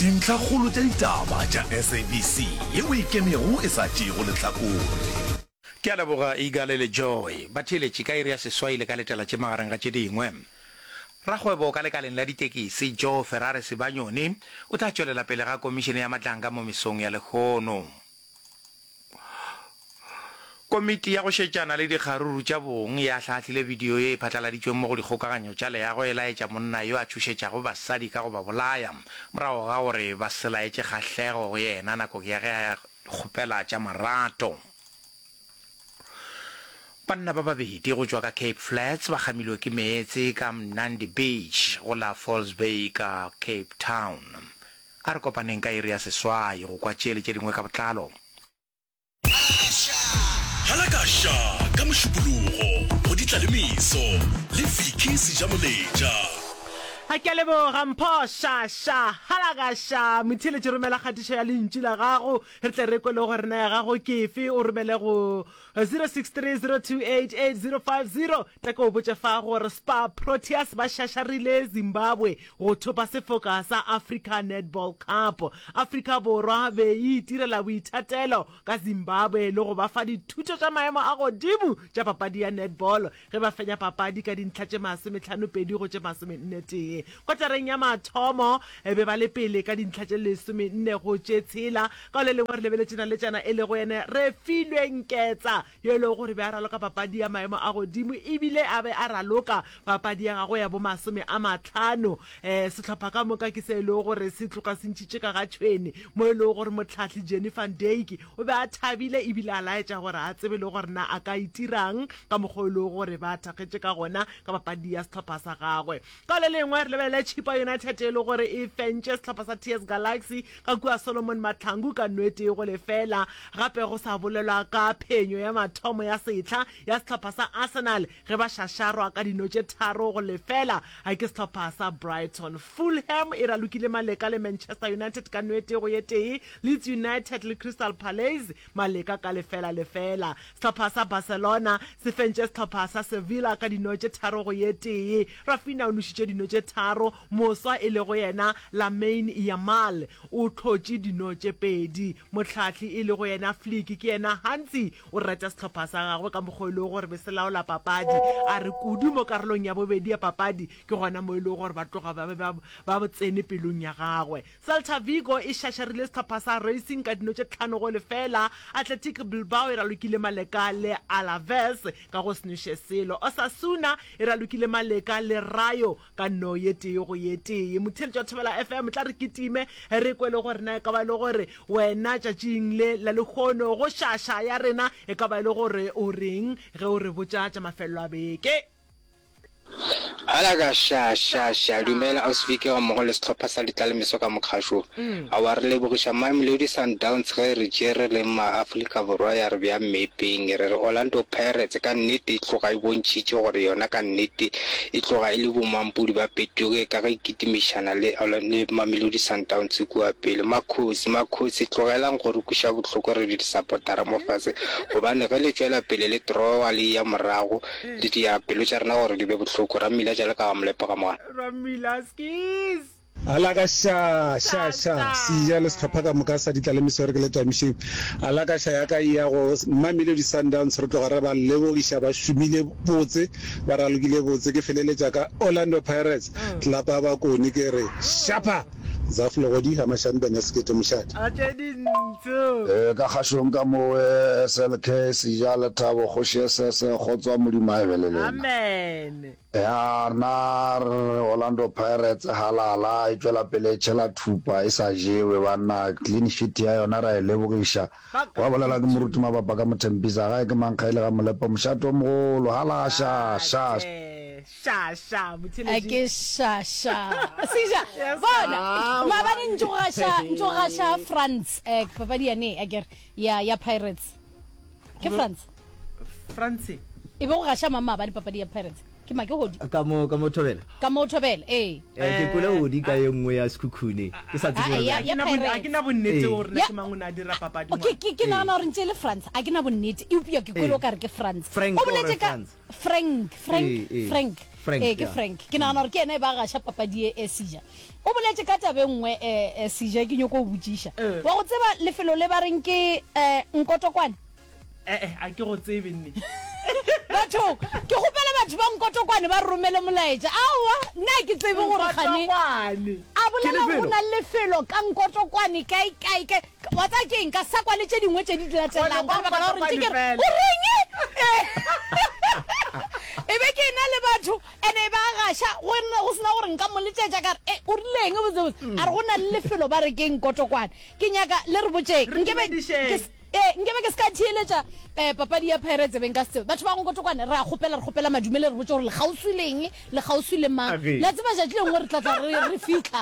Dintlhakgolo tša ditaba tša SABC ye o ikemego e sa tšeego lehlakore. Ke a leboga Igale le Joy, batheeletši ka iri ya seswai le ka letela tše magareng ga tše dingwe. Rakgwebo ka lekaleng la ditekisi, Joe Ferrare Sibanyoni, o tla tšwelela pele ga Komišene ya Matlanka mo mesong ya lehono. Komiti ya go Šetšana le Dikgaruru tša Bong e ahlaahlile bidio ye e phatlaladitšweng mo go dikgokaganyo tša leago e laetša monna yo a tšhošetšago basadi ka go ba bolaya morago ga gore ba se laetše kgahlego go yena nakong ya ge a kgopela tša marato. Banna ba babedi go tšwa ka Cape Flats ba kgamilwe ke meetse ka Mnandi Beach go la Falls Bay ka Cape Town. A re kopaneng ka iri ya seswai go kwa tše le tše dingwe ka botlalo. Halakasha ka Mošupologo go di tla le meso le Vicky Sejamoletša. Ke a leboga Mpho Shasha. Halakasha, Motheeletši romela kgatišo ya lentšu la gago re tle re kwe le gore na ya gago ke efe, o romele go 0630288050. Re ke o botše fa gore Spar Proteas ba šašarile Zimbabwe go thopa sefoka sa Africa Netball Cup. Afrika Borwa be e itirela boithatelo ka Zimbabwe le go ba fa dithuto tša maemo a godimo tša papadi ya netball ge ba fenya papadi ka dintlha tše masometlhanopedi go tše masomenetee. Kotareng ya mathomo be ba le pele ka dintlha tše lesomenne go tše tshela. Ka o le lengwe re lebeletše naletšana e lego ene Refilwe Nketsa. yo e lego gore be a raloka papadi ya maemo a godimo e bile a be a raloka papadi ya gagwe ya bomasome a matlhano. Um sehlopha ka moka ke se e lego gore se tloka se ntšhitše ka ga tšhwene, mo e lego gore mohlahli Jenny van Dyk o be a thabile e bile a laetša gore a tsebe le gore na a ka itira'ng ka mokgwa o e lego gore ba thakgetše ka gona ka papadi ya sehlopha sa gagwe. Ka le lengwe re lebelele Chippa United e le gore e fentše sehlopha sa TS Galaxy ka kua Solomon Mahlangu ka no e tee go lefela. Gape go sa bolelwa ka phenyo ya mathomo ya sehla ya sehlopha sa Arsenal ge ba šašarwa ka dino tše tharo go lefela ke sehlopha sa Brighton. Fulham e ralokile maleka le Manchester United ka no e tee go ye tee. Leeds United le Crystal Palace Maleka ka lefela lefela. Sehlopha sa Barcelona se fentše sehlopha sa Sevilla ka dino tše tharo go ye tee. Raphinha o nošitše dino tše tharo, moswa e lego yena Lamine Yamal o hlotše dino tše pedi. Mohlahli e lego yena Flick ke yena gantsi o reta sehlopha sa gagwe ka mokgwa o e lego gore be se laola papadi. A re kudu mo karolong ya bobedi ya papadi ke gona mo e lego gore ba tloga ba be ba tsene pelong ya gagwe. Celta Vigo e šašarile sehlopha sa Racing ka dino tše tlhano go lefeela. Athletic Bilbao e ralokile maleka le Alaves ka go se nweše selo. Osasuna e ralokile maleka le Rayo ka no ye tee go ye tee. Motheeletši wa Thobela FM, tla re kitime re kwe le gore na e ka ba e le gore wena tšatšing le la lehono go šaša ya rena e ka ba e le gore o reng ge o re botša tša mafelelo a beke. Ala ka sha sha sha dumela ausi Vike ga mmogo le setlhopha sa ditlalemeso ka mokgašo a wa re lebogiša Mamelodi Sundowns ge re tšere le ma Afrika Borwa ya re bja mmepeng e re re Orlando Pirates ka nnete e tloga e bontšhitše gore yona ka nnete e tloga e le bomampodi ba petoge ka ge e kitimišana le le Mamelodi Sundowns kua pele makhosi makhosi tlogelang go re kuša bohloko re le disapotara mo fase gobane ge le tšwela pele le trowa le ya morago di dia pelo tša rena gore di be bohloko. Rammila tša leka wa mo lepoga mona. Rammila, Skis! A la ka xa, xa, xa, Siya le sehlopha ka moka sa ditlalemiso re ke le twamišeng. A la ka xa ya ka e ya go Mamelodi Sundowns re tloga re ba lebogiša ba šomile botse, ba ralokile botse. Ke feleletša ka Orlando Pirates, tlelapa ya bakoni ke re, Shapa! Zaf Legodi, Hamashani Ben ya Sekete Moshate. A tše dintsho. Ee, ka kgašong ka mo oe SLK, Sija, Lethabo, Kgoši e sese, Kgotswa, Modimo a ebe le lena. Amen. Ya, rena re re Orlando Pirates halala e tšwela pele e tšhela thupa e sa jewe banna, clean sheet ya yona ra e lebogiša. Gwa bolelwa ke Moruti Mabapa ka Mothempisa, gae ke mankga e le ga Molepo, mošate o mogolo, halaa, sha, sha, sha. šaša a ke šaša seja bona Ah, maabane wa- ntsogaša ntsogaša france um papadi yane a kere ya ya pirates ke france france e be go gaša mang maabane papadi ya pirates ke make godi ka mo ka mo thobela ka mo thobela ee Eh, ke kole odi ka ye nngwe ya sekhukhune ke sa tsebe Ah, gore ya- na- ya Pirates. ga ke na bonnete Ee. gore na Ya- ke mang o ne a dira papadi O, ke- ke ke nagana gore ntse e le france a ke na bonnete eupša ke kwele o ka re ke france Frank o boletse or ka France? frank frank Ee, ee. frank Frank, ee ke yeah. frank ke nagana gore ke ena e ba gaša papadi e e seja o boletse ka tabe nngwe um seja ke nyoko o botšiša Eh. wa go tseba lefelo le ba reng ke um nkotokwane ee Eh, a ke go tsebe nne batho ke gopela batho ba nkotokwane ba romele molaetša aowa nna ke tsebe gore gane Nkotokwane. a bolela Ke lefelo. go na le lefelo ka nkotokwane kae kae kae Wa tsaya ke eng ka sa kwa le tše dingwe tše di latelang ka lebaka la gore ntše ke re o reng e be ke ena le batho ene e ba gaša go nna go sena gore nka mo letšetša ka re e o rileng botsebotse a re go na le lefelo ba re keng kotokwane ke nyaka le re botšeng nkebe ee nkebe ke se ka theeletša um papadi ya pirates beng ka setsebe batho ba go kotokwane re a kgopela re kgopela madumele re botse gore le kgauswi leng le kgauswi le mang la tseba jatši lengwe re tlatla re fitlha